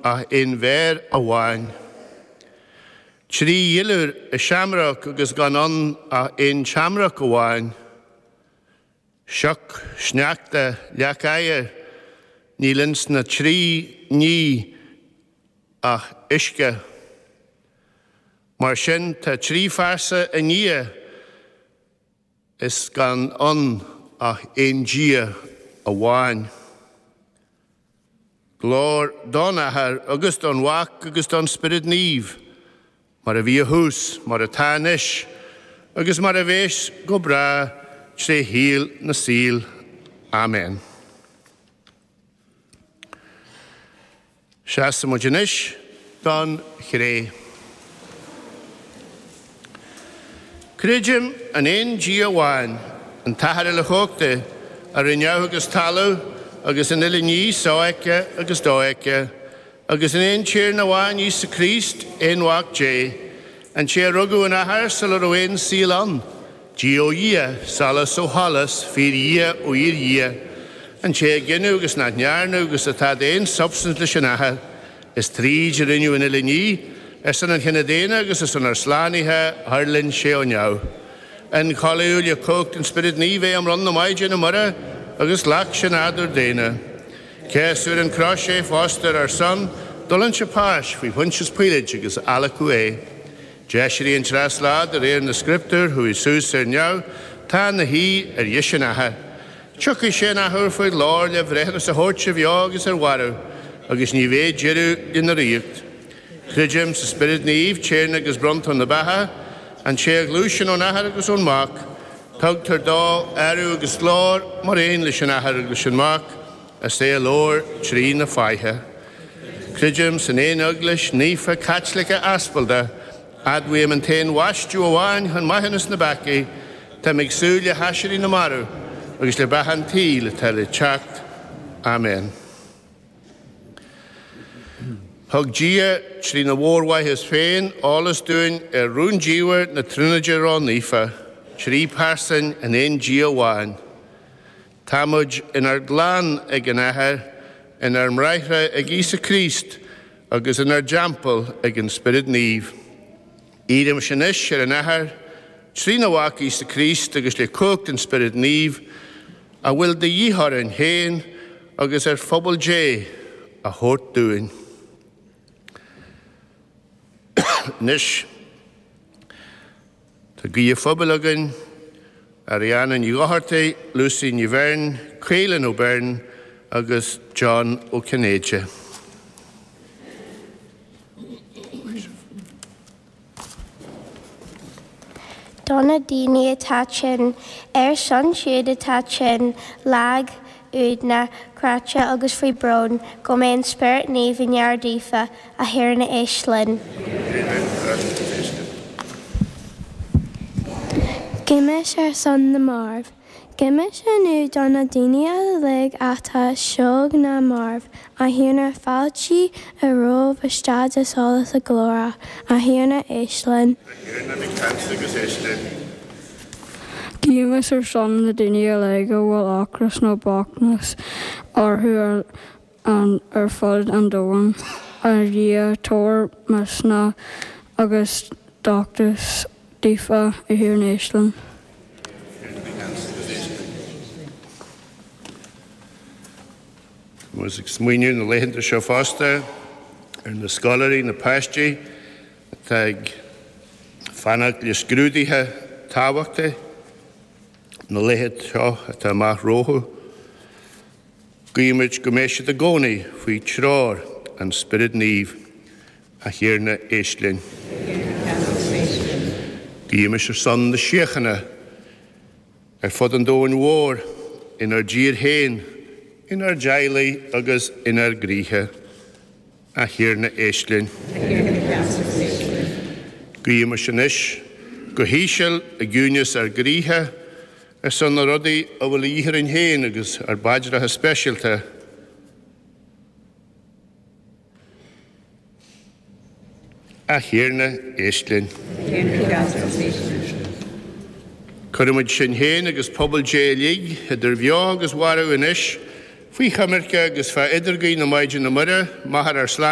ach aon mhéar amháin. Trí dhuilliúr i seamróg agus gan ann ach aon tseamróg amháin. Sioc, sneachta, leac oighir, níl ins na trí ní ach uisce. Mar sin tá trí phearsa i nDia, Is gan ann ach aon Dia amháin. Glóir don Athair agus don Mhac agus don Spiorad Naomh, mar a bhí ó thús, mar atá anois, agus mar a bhéas go bráth tré shaol na saol. Amen. Seasann muid anois don Chré. Creidim in aon Dia amháin, an tAthair Uilechumhachtach, a rinne neamh agus talamh agus an uile ní, sofheicthe agus dofheicthe, agus in aon Tiarna amháin, Íosa Críost, Aon-Mhac Dé, an té a rugadh ón Athair sula raibh aon saol ann, Dia ó Dhia, solas ó sholas, fíor-Dhia ó fhíor-Dhia, an té a gineadh agus nach ndearnadh agus atá d'aon substaint leis an Athair, is tríd a rinneadh an uile ní, ar son an chine daonna agus ar son ár slánaithe thuirling sé ó neamh. Ionchollaíodh le cumhacht an Spioraid Naoimh é i mbroinn na Maighdine Muire agus ghlac sé nádúr daonna. Céasadh ar an gcrois é fosta ar ár son, d'fhulaing sé páis faoi Phointias Píoláit agus adhlacadh é. D'aiséirigh an treas lá de réir na scrioptúr, chuaigh suas ar neamh, tá ina shuí ar dheis an Athar. Tiocfaidh sé an athuair faoi ghlóir le bhreithiúnas a thabhairt ar bheo agus ar mhairbh, agus ní bheidh deireadh lena ríocht. Creidim sa Spiorad Naomh, Tiarna agus Bronntóir na beatha, an té a ghluaiseann ón Athair agus ón Mac. Tugtar dó adhradh agus glóir, mar aon leis an Athair agus leis an Mac. Is é a labhair trí na Fáithe. Creidim san aon Eaglais naofa Caitliceach Aspalda, admhaím an t-aon bhaisteadh amháin chun maithiúnas na bpeacaí, táim ag súil le haiséirí na marbh agus le beatha an tsaoil atá le teacht. Amen. Thug Dia, trína mhórmhaitheas féin, eolas dúinn ar rúndiamhair na Tríonóide Ró-Naofa, trí pearsain in aon Dia amháin. Tá muid inár gclann ag an Athair, inár mbráithre ag Íosa Críost, agus inár dteampall ag an Spiorad Naomh. Iarraimis anois ar an Athair, trína Mhac Íosa Críost agus le cumhacht an Spioraid Naoimh, a bhfuil de dhíth orainn féin agus ar phobal Dé a thabhairt dúinn. Anois. Tá Guí an Phobail againn, Ariana Ní Dhochartaigh, Lucy Ní Bheirn, Caolan Ó Beirn agus John Ó Cinnéide. Do na daoine atá tinn, ar son siúd atá tinn, lag, Uaigneach, cráite agus faoi brón go mbeidh an Spiorad Naomh i ngar daofa, a Thiarna éist linn. Guímis ar son na marbh. Guímis inniu do na daoine uilig atá ar shlua na marbh A Thiarna, fáiltigh rompu isteach i solas na glóire. A Thiarna, éist linn. A Thiarna, bí ceansa agus éist linn. Guímis ar son na daoine uilig a bhfuil ocras nó bochtnas orthu ar fud an domhain. A Dhia, tabhair misneach agus dóchas daofa. A Thiarna, éist linn. A Thiarna, bí ceansa agus éist linn. Agus ag smaoineamh na laethanta seo fosta ar na scoláirí, na páistí atá ag fanacht le scrúduithe tábhachtacha na laethanta seo atá amach rompu. Guímid go mbeidh siad i gcónaí faoi treoir an Spioraid Naoimh. A Thiarna, éist linn. Guímid ar son na síochána. Ar fud an domhain mhóir, inár dtír féin, inár dteaghlaigh agus inár gcroíthe. A Thiarna, éist linn. A Thiarna, bí ceansa agus éist linn. Guímis anois, go híseal, i gciúineas ár gcroíthe, ar son na rudaí a bhfuil a dhíth orainn féin agus ár bpaidreacha speisialta. A Thiarna, éist linn. Cuirimid sinn féin agus pobal Dé uilig, idir bheo agus mharbh anois, faoi choimirce agus fá idirghuí na Maighdine Muire, Máthair ár Slánaitheora.